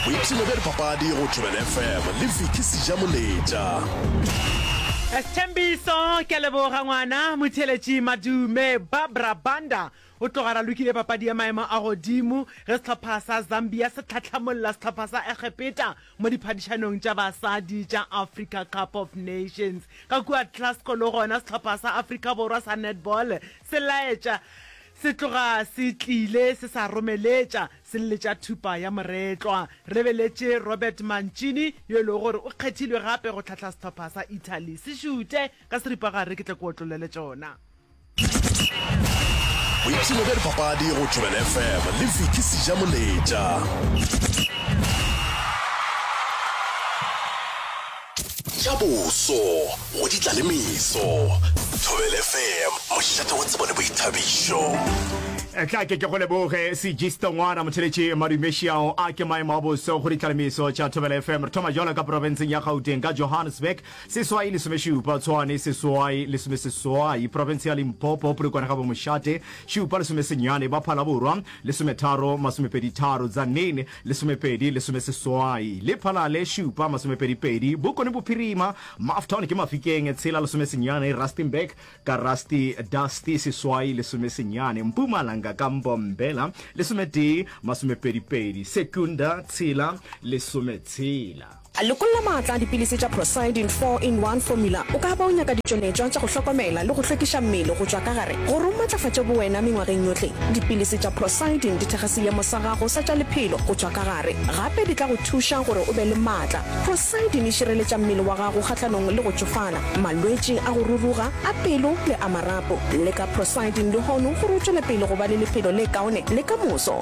boipshino bja dipapadi go thobela fm le viki seja moletša sethembiso ke a leboga ngwana motheletši madume babra banda o tloga ra lokile papadi ya maemo a godimo ge sehlopha sa zambia se tlhatlhamolla sehlopha sa egepeta mo diphadišanong tša basadi tša africa cup of nations ka kua tlasco le gona sehlopha sa africa borwa sa netball se laetša Se tloga se tlile se sa romeletša sille tša thupa ya moretlwa. Re beletše Robert Mancini, yo e lego gore o kgethilwe gape go hlahla sehlopha sa Italy. Se šute ka seripagare ke tle ke otlolele tšona. Boipshino bja dipapadi go Thobela FM le Vicky Sijamoletša. Tša boso go di tla le meso. Thobel FM, mošate wa tsebo le boithabišo. Tla ke ke go leboge segisto ngwana motheletši madumešiao a ke maemo a boso go ditlalemiso tša thobela fm re thoma jalo ka porofenseng ya gauteng ka johannesburg seswai lesomešupa tshwane seswai lesomeseswai porofense ya limpopo polokwane ga bomošate šupa lesomesenyane ba phalaborwa lesometharo masomepeditharo dzanene Lesomepedi, lesomeseswai, lephalale, šupa, masomepedipedi, Bokone Bophirima, Mafton ke Mafikeng, tshela, lesomesenyane, Rustenburg ka Rusty, Dusty, seswai, lesomesenyane, Mpumalanga ka Mbombela, lesometee, masomepedipedi, Secunda, tshela, lesometshela. Lekolla maatla a dipilisi tša Procyldin 4 in 1 Formula. O ka ba o nyaka ditšweletšwa tša go hlokomela le go hlwekiša mmele go tšwa ka gare gore o matlafatše bowena mengwageng yohle. Dipilisi tša Procyldin di thekga seemo sa gago sa tša lephelo go tšwa ka gare. Gape di tla go thuša gore o be le maatla. Procyldin e šireletša mmele wa gago kgahlanong le go tšofala, malwetši a go ruruga, a pelo le a marapo. Leka Procyldin lehono gore o tšwele pele go ba le lephelo le kaone le ka moso.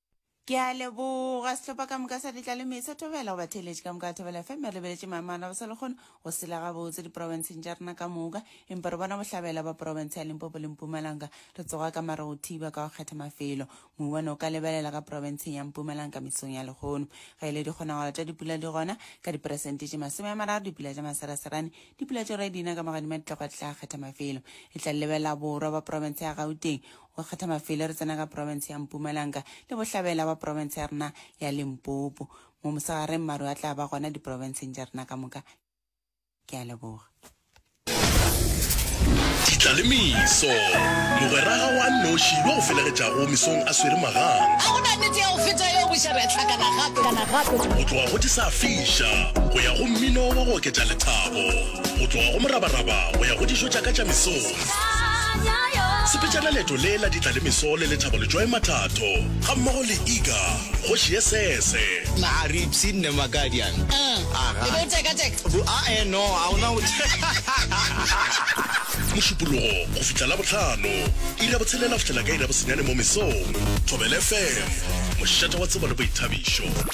ke a leboga setlhopha ka moka sa ditlaleme sa thobela go batheeletše ka moka a thobela fm re lebeletše maemana ba sa le kgone go sela gabotse diporofenseng tša rena ka moka empa re bona bohlabela ba porofense ya limpopo le mpumalanga re tsoga ka mara go thiba ka go kgetha mafelo mouwane o ka lebelela ka porofenseng ya mpumalanga mesong ya lekgono ge e le dikgonagalo tša dipula di gona ka diperesente tše masome ya mararo dipula tša maseraserane dipula tšo re dina ka magadima ditlagwa tla kgetha mafelo e tla lebelela borwa ba porofense ya gauteng Go kgetha mafelo re tsena ka profense ya Mpumalanga le bohlabela ba profense ya rena ya Limpopo. Mo mosegareng maru a tla ba gona diprofenseng tša rena ka moka. Ke a leboga. Ditla le meso. Mogweraga wa nnoši yo o felegetšago mesong a swere magang. A go na nnete ya go feta yeo boša re a hlakana gape, kana gape? Go tloga go disafiša go ya go mmino wa go oketša lethabo, go tloga go morabaraba go ya go dijo tša ka tša mesong. Sepetšana leeto le la ditla le meso le lethabo letšwae mathatho ga mmogo le Iga kgoši ye sese. Na a re ipsene ne Makadian? Uh, e be o teka teka? Bu, a eh no, a ona go Mošupologo go fihla la bohlano, iri ya botshelela go fihlela ka iri ya bosenyane mo mesong. Thobela FM, mošate wa tsebo le boithabišo.